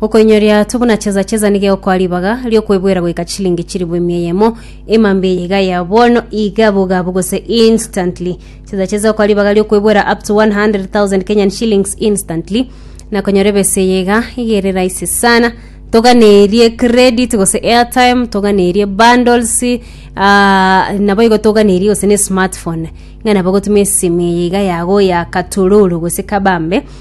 Gokoinyoria tu buna cheza cheza nigo egokoa ribaga riokwebwera goika chilingi chilifu emia eyemo, emamba eye iga ya bono iga bogabu gose instantly. Cheza cheza egokoa ribaga riokwebwera up to 100,000 Kenyan shillings instantly. Na konyora ebesa eye iga iga ere rahisi sana. Toganerie credit gose airtime, toganerie bundles, ah, nabo igo toganerie gose ne smartphone. Ng'a nabo gotumia esimi eye iga yago ya katororo gose kabambe.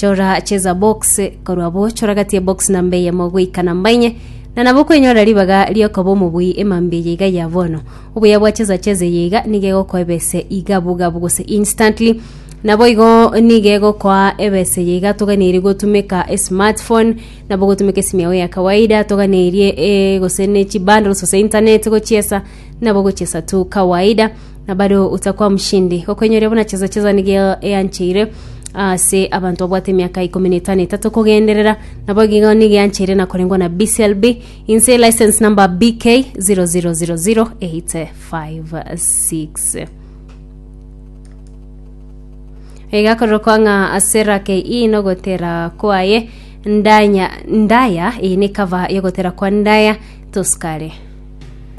Chora cheza box korwa abwo choragatie box namba eyemo goika namba enye na nabo kwenyora ribaga riokoba omobui emambi eye iga ya bono obuya bwa cheza cheza eye iga niga egokoa ebese iga bugabu gose instantly nabo igo niga egokoa ebese eye iga toganeiri gotumeka esmartphone nabo gotumeka esimu yao ya kawaida toganeirie eh, gose ne chibundles gose internet gochiesa nabo gochiesa tu kawaida na bare otakwa moshindi, okoinyoria buna chesa chesa nigo eancheire ase abanto babwate emiaka ikomi na etano etato kogenderera, nabo igo nigo eancheire na korengwa na BCLB inse license number BK 0000856. Igakorokwa ng'a ase rake ii nogotera kwaye ndanya ndaya eye ne cover yogotera kwa ndaya tosikare